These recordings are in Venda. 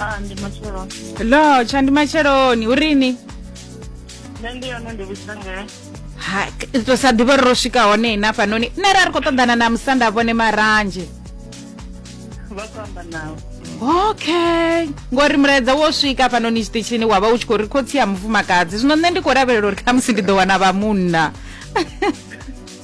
Ah, ndi matshelo. lo tsha ndi matsheloni hu rini Nṋe ndi yone ndi vhudzisa ngei. ha to sa ḓivha uri ro swika hone na fhanoni nṋe ra ri khou ṱoḓana na musanda vhone maranzhe Vha khou amba nawe. okay ngori mulaedza wo swika fhanoni tshiṱitshini wa vha u tshi khou ri khotsi ya mufumakadzi zwino nṋe ndi khou lavhelela uri khamusi ndi ḓo wana vha munna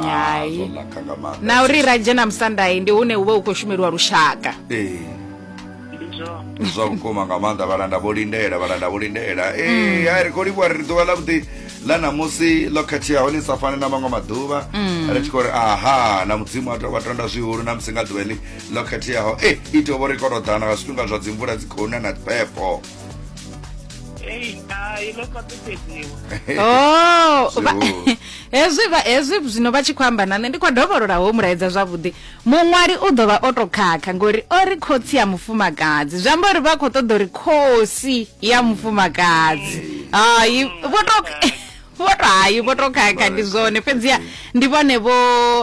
Hai. zwo naka nga maanḓa na uri ra dzhena musandai ndi hune uvha u khou shumeliwa lushaka Ee, ndi zwone ndi zwa vhukuma nga maanḓa vhalanda vho lindela vhalanda vho lindela ee hai ri khou livhuwa ri ḓuvha ḽa vhuḓi ḽa ṋamusi ḽo khetheaho ḽi sa fani na maṅwe maḓuvha ri tshi khou ri aha na mudzimu a to- wa tonda zwihulu na musi nga ḓuvha ḽi ḽo khetheaho e i tou vho ri koroḓana nga zwifhinga zwa dzimvula dzi khou na na phepho Ei, hai ndo fhaṱusedziwa oh vha- Zwo. hezwi vha- hezwi zwino vha tshi khou amba na nṋe ndi khou dovholola ho mulaedza zwavhuḓi muṅwali u ḓo vha o to khakha ngori o ri khotsi ya mufumakadzi zwi amba uri vha khou ṱoḓa uri khosi ya mufumakadzi hayi vho to vho to hayi vho to khakha ndi zwone fhedziha ndi vhone vho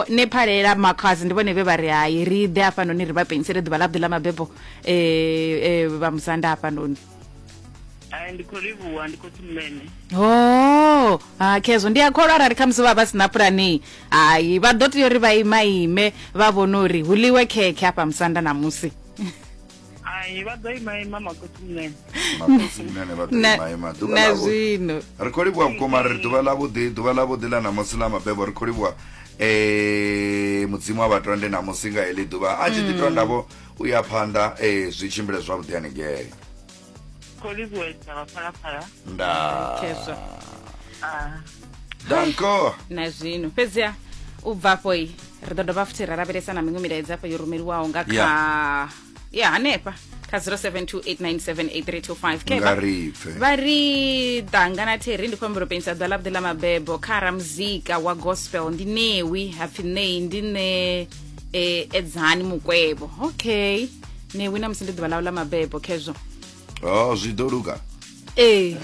nephalela makhazi ndi vhone vhe vha ri hayi ri ḓe hafhanoni ri vha penisele ḓuvha ḽa vhuḓi ḽa mabebo e, e, vhamusanda hafhanoni Hai, ndi khou livhuwa ndi khou tumene ho ha khezwo ndi a kholwa arali khamusi vha vha si na pulani hayi vha ḓo tea uri vha imaime vha vhone uri hu ḽiwe khekhe hafha musanda ṋamusi ai vha ḓo ima ima makotumene makosimene vha Na- ḓoimaima ḓuvha na ḽavhuḓi. zwino ri khou livhuwa vhukuma ri ḓuvha ḽavhuḓi ḓuvha ḽavhuḓi ḽa ṋamusi ḽa mabebo ri khou livhuwa eh, mudzimu wa vhatonde ṋamusi nga heḽi ḓuvha a tshi ḓi tondavho u ya phanḓa eh, zwi tshimbile zwavhuḓi haningei khou livhuwa dza vhaphalaphala nda Khezwa. Ah. danko na zwino fhedziha u bva afho i ri ḓo dovha futhi ra lavhelesa na miṅwe milaedza afho yo rumeliwaho nga kha ya hanefha kha 0728978325 nga Khevha, ri pfe vha ri danga na theri ndi khou humbela u penyisa ḓuvha ḽavhuḓi ḽa mabebo kha ramuzika wa gospel ndi newi hapfi nei ndi ne e edzani mukwevho okay ne wina musi ndi ḓuvha ḽawu ḽa mabebo khezwo oh zwi ḓo luga ee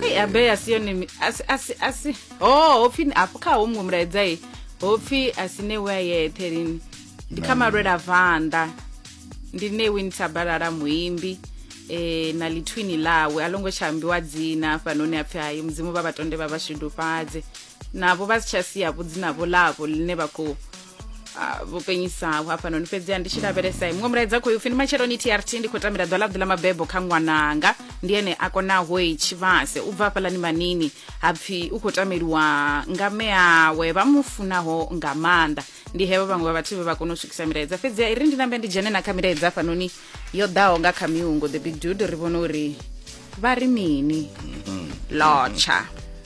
ei abe a si yone a si ho oh, ho pfi afho kha ho muṅwe mulaedza e ho pfi a si newe a yeṱhe lini ndi kha malwela vanḓa ndi newe ni thabalala muimbi eh na lithwini lawe a longo tsha ambiwa dzina hafhanoni a pfi hayi mudzimu vha vhatonde vha vhashudufhadze navho vha si tsha sia vhudzi navho ḽavho ḽine vha khou vho penyisaho hafhanoni fhedziha ndi tshi lavhelesa muṅwe mulaedza khou upfi ndi matsheloni trt ndi khou tambela ḓwa ḽavhuḓi ḽa mabebo kha ṅwananga ndi ene a konaho i tshivhase u bva hafhaḽani manini ha pfi u khou tameliwa nga mme awe vha mu funaho nga maanḓa ndi hevho vhaṅwe vha vhathu vhe vha kona u swikisa milaedza fhedziha i ri ndi nambe ndi dzhene na kha milaedza hafhanoni yo ḓaho nga kha miungo the big dude ri vhone uri vha ri mini mm-hmm. lotsha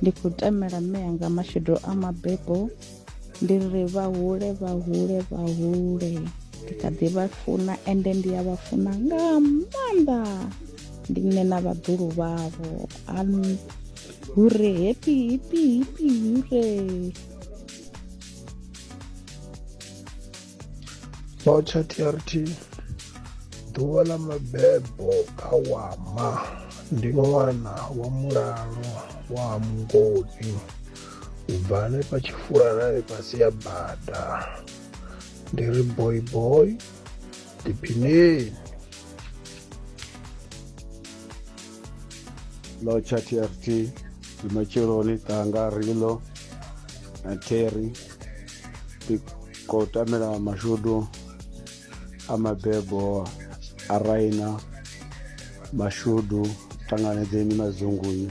ndi khou tamela mme anga mashudu a mabebo ndi ri vha hule vha hule vha hule ndi kha ḓi vha funa ende ndi a vha funa nga maanḓa ndi nṋe na vhaḓulu vhavho hure happy happy happy hure Tsho tsha TRT ḓuvha ḽa mabebo kha wama ndi ṅwana wa mulalo wa mungoni u bva hanefha tshifulanani fhasi ya bada ndi ri boy boy diphineni lo tsha trt ndi matsheloni ṱanga rilo na terry khou tamela mashudu a mabebo a raina mashudu ṱanganedzeni madzungunyu